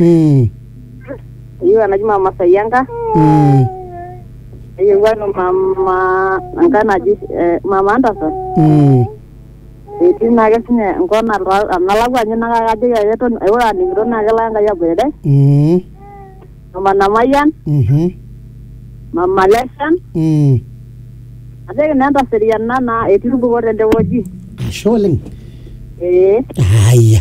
Mm. eyieu enaji mama sayianka Mm. eyieu eno mama enkae naji eh, mama antasa Mm. etii naake sinye enkop nalwa- nalakua ninye naa kajoki ake eton ore aning'ito naa kelo enkai aboitare Mm. mama namayian Mhm. mama leshan Mm. ajoki naa entaseriana naa etii irbuko tende wueji Ashe oleng. ee Haya.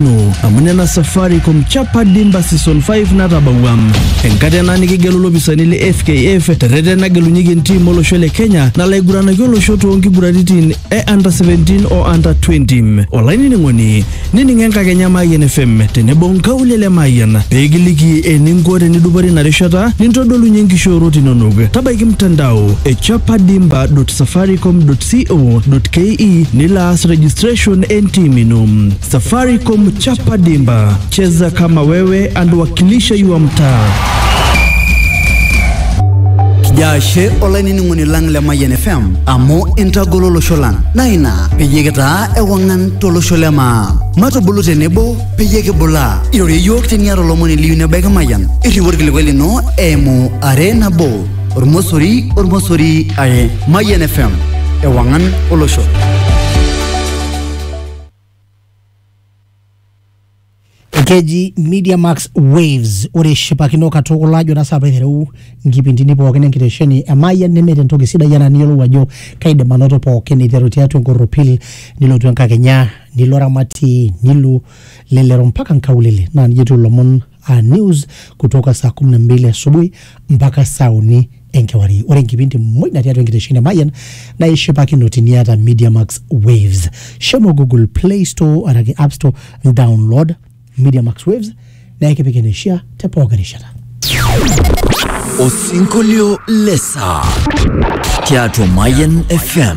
No, amu nena Safaricom chapa dimba season 5 natabawua enkata ena nikigelu lopisani le FKF terreten nagelunyeki entim olosho le Kenya nalaiguranaki olosho toonkiguraritin e under 17 o under 20 olainining'oni nining enkakenya Mayian FM tenebo nkaulele Mayian peekiliki eninko tenidupore ina rishata nintodolunye nkishoorot inonok tabaiki mtandao e chapadimba.safaricom.co.ke nilo aas registration entim ino Safaricom chapa dimba, cheza kama wewe and wakilisha yua mtaa. Jashe olainining'oni lang le Mayian FM amu intagolo olosho lang naa ina peyie kitaa ewang'an tolosho le maa. Matubulu tenebo peyie kibulaa. Irorie iyiook teniata olomoni liyu nebaiki Mayian. Irriwaa orkilikuai lino eimu are nabo ormosori ormosori are. Mayian FM ewang'an olosho. keji media max waves ore shipakino katukul ajo naa saa paiteru nkipindini pookin enkitesheni emayian nemeeta entoki sidai enaa niyiolou ajo kaidim anoto pookin iteru tiatua enkorropil nilotu enkakenya nilo ramatie nilo lelero mpaka nkaulele naa nijia etiu ilomon aa news kutoka saa 12 asubuhi mpaka saa uni enkewarie ore enkipindi muj natii atua enkitesheni e mayian naa ishipakino tiniata media max waves shomo google play store araki app store download media max waves naa ekipik eneishia te pooki rishata Osinkolio lesa tiatua Mayan FM.